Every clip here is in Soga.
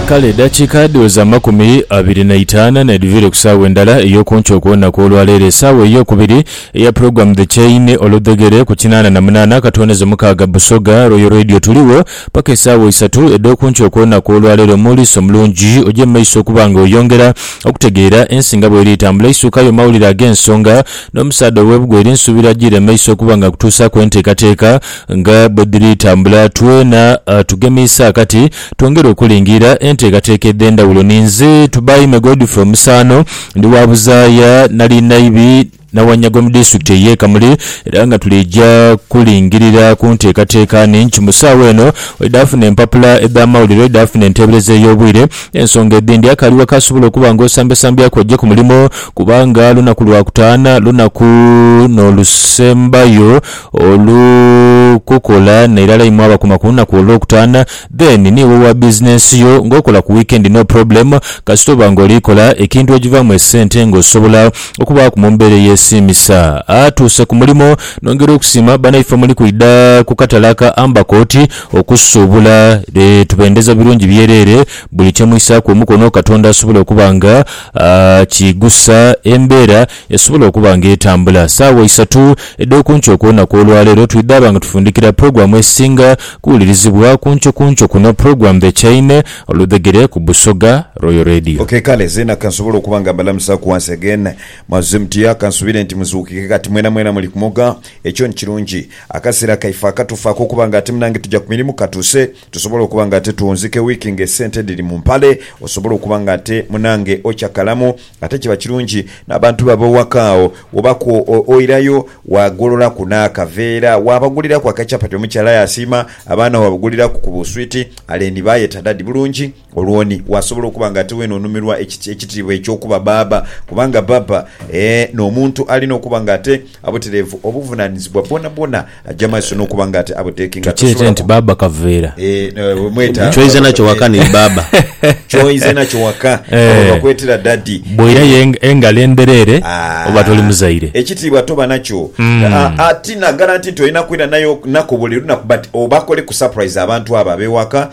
Kale edhakiika dhiweza amakumi abiri na itaanu n'edhivire ku saawa endala ey'okunkyo okw'olunaku olwaleero, esaawa ey'okubiri eya Program The Chain, oludhegere, ku kinaana na munaana akatonezo mukaaga Busoga Royal Radio. Tuligho paka esaawa isatu edh'okunkyo okw'olunaku olwaleero. Omuwuliisi omulungi oje mu maiso okuba nga oyongera okutegeera ensi nga bweri etambula. Eisuukayo mawulire ag'ensonga n'omusaadha ow'ebugwa eri nsuubira ajiire mu maiso okuba nga akutuusaaku enteekateeka. Nga bwe dhiri tambula twena tugemiise akati twongere okulingiira enteekateeka edh'endhawulo. Ninze Tubaime Godfrey Omusaano, ndi wa buzaaya nali naibi na Wanyago mu disitulikiti ey'e Kamuli era nga tuliija kulingirira ku nteekateeka nhingi mu saawa eno. Oidhaafuna empapula edh'amawulire, oidhaafuna enteebereza ey'obwire n'ensonga edhindi akaali waka asobola okuba nga osambyasambyaaku oje ku mulimo kubanga lunaku Lwakutaana lunaku n'olusembayo Olu kukola nairala imwe abakuma kulunaku olwokutana then ni wowa business yo nga okola ku weekend no problem kasita oba nga olikola ekintu ojivamu esente nga osobola okubaaku mumbera eyesiimisa atuuse kumulimo nongera okusiima banaife omuli kwidha kukatale aka Amber court okusuubula tubendeza birungi byerere buli kyemwisaaku omukono katonda asobola okuba nga akigusa embera Esobola okuba nga etambula saawa isatu edh'okunkyo okw'olunaku olwaleero. Twidhaaba nga tufundikira pulogulaamu esinga kuwulirizibwa kunkyokunkyo kuno, pulogulaamu The Chain, Oludhegere, ku Busoga Royal Radio. Ok kale zeena kansobole okuba nga mbalamusaaku once again. Mwazze mutya? Kansubire nti muzuukike kati mwenamwena muli kumoga. Ekyo ni kirungi. Akaseera kaife akatuufu ak'okuba nga ate munange tuja ku mirimu katuuse. Tusobola okuba nga ate twonzike wiiki ng'esente edhiri mu mpale. Osobola okuba nga ate munange ocakalamu. Ate kiba kirungi n'abantu bo ab'oghaka agho wobaaku oirayo waagololaku n'akaveera, waabaguliraku akachapati omukyala yaasiima, abaana waabaguliraku ku buswiti, aleni baayeta dadi bulungi. Olwo ni wasobola okuba nga ate weena onumirwa ekitiibwa eky'okuba bbaabba, kubanga bbaabba n'omuntu alina okuba nga ate abutereevu obuvunaanyizibwa bwonabwona aja maiso n'okuba nga ate abuteekinga. Tukyete nti bbaabba kaveera. Kyoize nakyo waka ni bbaabba. Kyoize nakyo waka oba bakwetera ddaddi. Bw'oirayo engalo endhereere oba toli muzaire. Ekitiibwa toba nakyo. Ti naagala nti olina kwira nako buli lunaku but obakoleku surprise abantu abo ab'ewaka.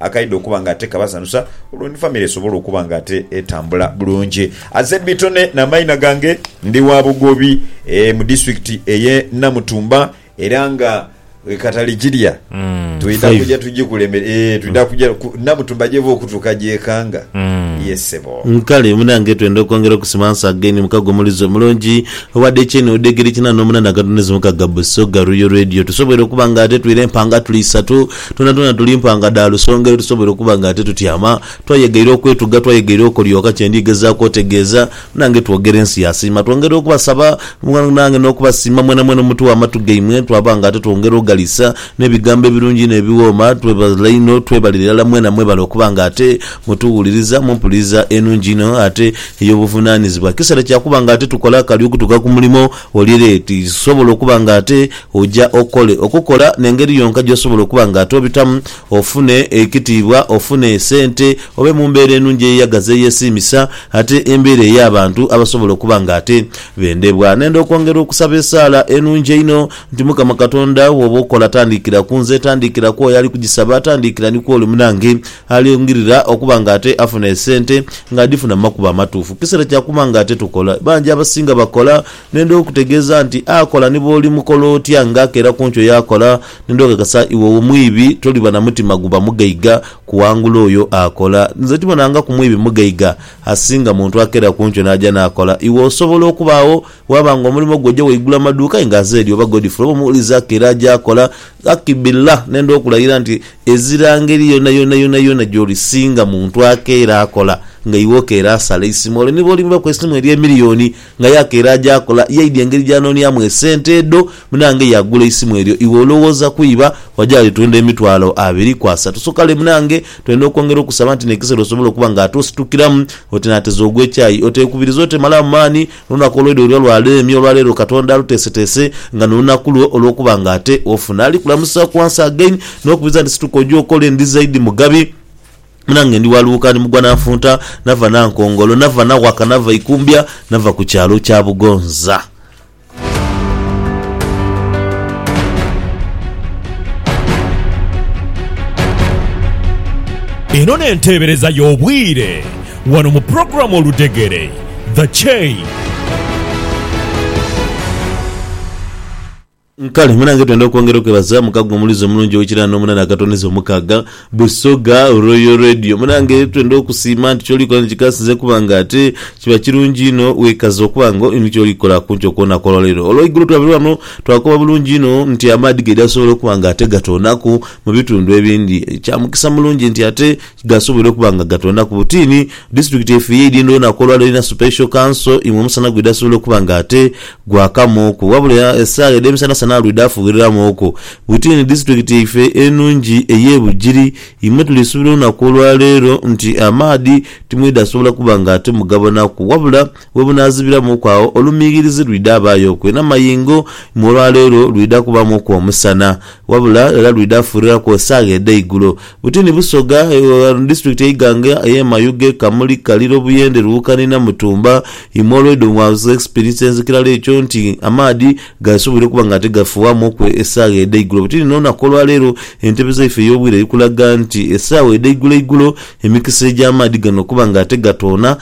Akaidha okuba nga ate kabasanhusa olwo ni famire esobola okuba nga ate etambula bulungi. Aze Bitone n'amaina gange, ndi wa Bugobi mu disitulikiti eye Namutumba era nga katali gilya twidha kuja tugikulemere ee twidha kuja Namutumba gyeva okutuuka gyekanga ye ssebo. Kale munange twenda okwongera okusima once again mukago omulizi omulungi owa decenni odegerekinha nomunana akatono ezimukaga Busoga Royal Radio tusobweire okuba nga ate twire empanga tuli isatu Twonatwona tuli mpanga dha lusonga ye tusobola okuba nga titutyama. Twayegaire okwetuga, twayegaire okolyoka. Kye ndi gezaaku otegeeza, nange twogera ensi yasiima. Twongera okubasaba, nange n'okubasiima mwenamwena omutugha amatu gaimwe, twaba nga ate twongera oghaliisa n'ebigambo ebirungi inho ebiwooma. Twebale inho, twebalire irala mwena mwebale okuba nga ate mutuwuliriza mu mpuliriza enungi inho ate ey'obuvunaanizibwa. Kiseera kya kuba nga ate tukola akali okutuuka ku mulimo. Wulira eti, zisobola okuba nga ate oja okole, okukola n'engeri yonka gy'osobola okuba nga ate obitamu ofune ekitiibwa, ofune esente, obe mu mbeera enungi eyeyagaza eyesiimisa, ate embeera ey'abantu abasobola okuba nga ate bendebwa. Nenda okwongera okusaba esaala enungi einho nti, Mukama Katonda, wooba okola, tandiikira ku nze, tandiikira ku oyo ali kugisaba, tandiikira ni ku oli munange, Alingirira okuba nga ate afuna esente nga adhifuna mu makubo amatuufu. Kiseera kya kuba nga ate tukola. Bangi abasinga bakola. Nenda okutegeeza nti akola ni bw'oli mukola otya nga akeera ku nkyo yaakola. Nenda okakasa iwe omwibi toliba na mutima guba mugaiga kuwangula oyo akola. Nze tibonangaku mwibi mugaiga asinga muntu akeera ku nkyo n'aja n'akola. Iwe osobola okubaawo Bwaba nga omulimo gwe oja waigula amaduuka aye nga aze eri oba Godfrey oba omuli Zaake era aja akola, Ghaki billah nenda okulayira nti ezira ngeri yonayonayonayona gyoli singa muntu akeera akola nga iwe okeera asala eisimu olwo ni bwolimubaku eisimu erye miliyoni nga ye akeera aja akola ye aidha engeri gyanonyamu esente edho munange yagula eisimu eryo iwe olowooza kwiba waja walitunda emitwalo abiri ku asatu so kale munange twendha okwongera okusaba nti nekisera osobola okuba nga ate ositukiramu oti nateza ogwa ekyayi otekubiriza otemalamu maani N'olunaku olwaidha olwa lwa leemye olwa leero Katonda aluteeseteese nga n'olunaku lwo olw'okuba nga ate ofuna ali kulamusa ku once again n'okubiriza nti situka oje okole ndi zaidi mugabi mu nange ndi wa lughuka ni mugwa na nfunta nava na nkongolo nava na waka nava ikumbya nava ku kyalo kya Bugonza. Eno n'enteebereza y'obwire. Wano mu program Oludhegere, The Chain. Kale munange twenda okwongera okwebaza mukago omulizi omulungi owekirano omunana akatoneza omukaaga Busoga Royal Radio munange twenda okusiima nti kyoli kola nikikasinze kubanga ate kiba kirungi inho wekaza okuba nga olina kyoli kola kunkyo kwonaku olwaleero olweigulo twabere wano twakoba bulungi inho nti amaadhi gaidhi asobola okuba nga ate gatonaku mubitundu ebindi kyamukisa mulungi nti ate Gasoboire okuba nga gatondaku butiini. District yaife ye Idindoo naku olwaleero erina Supesho Kanso imwe omusana gweidha asobola okuba nga ate gwakamuuku wabula esaawa edhemisanasana alwidha afughiriramuuku butiini district yaife enungi eye Bugiri imwe tulisuubira olunaku olwaleero nti amaadhi timwidha sobola kuba nga ate mugabonaku wabula We bunaazibiramuuku agho, olumiighirizi lwidha abaayoku ena mayingo, imwe olwa leero lwidha kubamuuku omusana, wabula era lwidha fuuriraku esaagha edh'eigulo. Butini Busoga, Disitulikiti Eiganga, eye Mayuge, Kamuli, Kaliro, Buyende, Luwukani, Namutumba, imwe olweidho mwaaza experience nzikirala ekyo nti amaadhi gaasobwoire okuba nga tigafuuwamuuku esaagha edh'eigulo. Butini n'olunaku olwa leero, entebeza yaife ey'obwire eri kulaga nti esaagha edh'eiguloigulo emikisa egy'amaadhi gano okuba nga tegatoona,